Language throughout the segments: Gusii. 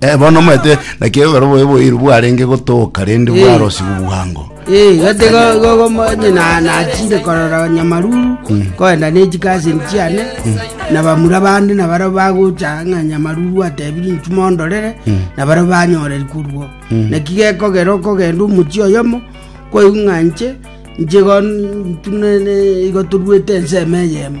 Eh, bono omanyete naki ekero bobe boiru bwarenge gotoka rende Eh. bwarosigwa bwango Eh, gati go- go- go- mo- nyina nachire korora nyamaruru koenda nechikasini chiane na bamura bande na baro bagocha ng'a nyamaruru atebiri nchuma ondorere na baro banyoreri kurwo naki gekogera okogenda omochi oyomo koigwa ng'a nche nche igo ntunene igo torwete ensemo eyemo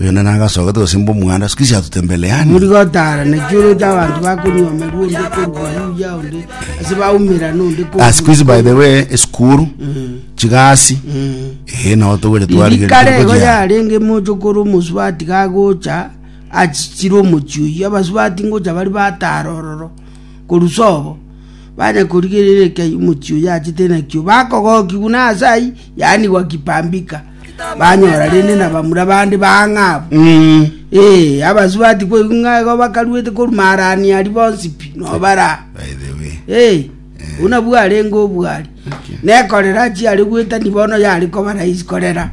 Oyo nere agasoka tose mbomwana, siku hizi hatutembeleani. Muri gotara nechurete abanto bakonyomerwa onde korwa buya onde ase baumera nonde korwa Ah, siku hizi by the way, esukuru, chigasi, eh, nao togweria twarigeri kare igo tokojea. yarenge moche okora omosubati gagocha achichire omochi oyio abasubati ngocha bari batara ororo korusa obo banya korigereria ekiagera omochi oyo achete nakio bakogoki buna ase aywo yaanigwa kipambika banyora rende nabamura bande bang'abu. Mm. Ee, abasubati koigwa ng'a igo bakaruete koruma arani aria bonsi pi nobara. By the way. Ee, buna bwarenge obwari. Okay. Nekorera chiare gwetani bono yari koba raisi korera.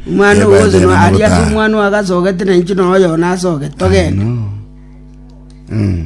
Omwana Yeah, by ogoso the no way, ari ase nobota. omwana oagasogete na inche noyo nasogete togende. No. Mm.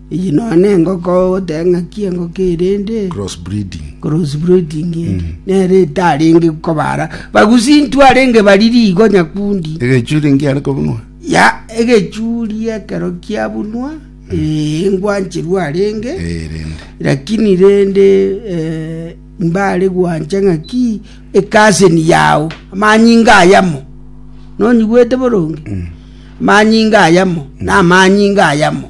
Eye nonya nengoko ogoteba ng'aki engoko eye rende Cross breeding. cross breeding ende nere etarenge kobara bagusi ntu arenge bariri igo nyakundi Egechuri ngiare kobunwa. ya egechuri ekero kiabunwa eh, engwancheru arenge Eh, rende. lakini rende eh, mbare gwancha ng'aki ekaseni yao amanyinga ayamo nonyigwete boronge amanyinga ayamo na amanyinga ayamo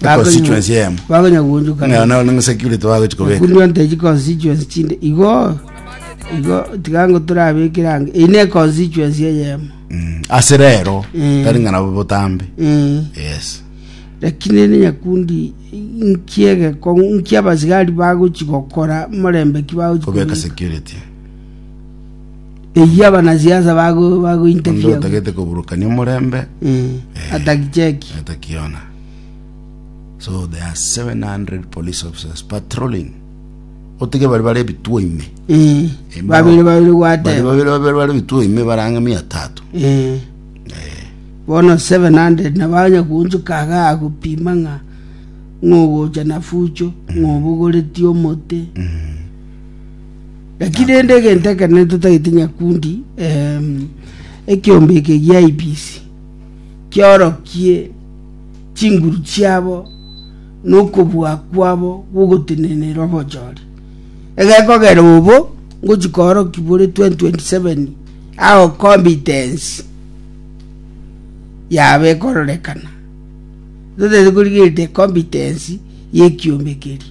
Na constituency emo. Bagonya guonjuka. Ng'a na na security bagochi kobeka. Kunywa nteji constituency chinde. Igo igo tigango turabekire ange. Ine constituency eyemo. Mm. Ase rero Mm. tari ng'a nabo botambe. Mm. Yes. lakini ne nyakundi nkiege ko nkia basigari bagochi gokora morembe ki bagochi Kobeka kobeka. security. Eyio abanasiasa bago Onde bagointerviewigwa. otagete koburukania omorembe Eh, atakicheki. atakiona so there are 700 police officers patrolling otike bari bare ebituo ime Eh, Emo. babere babere bari gwateba. babere babere bare ebituo ime barang'e mia tatu Eh. Bono 700 na banya kunchuka aga agopima ng'a ng'ogocha na fucho ng'obogoreti omote Naki rende egento ekenene totagete nyakundi, ekeombe eke gia Ibisi, kiorokie chinguru chiabo na okobua kwabo gw'ogotenenera obochori. Egekogera obo ngochi kooroki bore 2027 ao competence yabo ekororekana. Totagete korigereria competence y'ekiombe keria.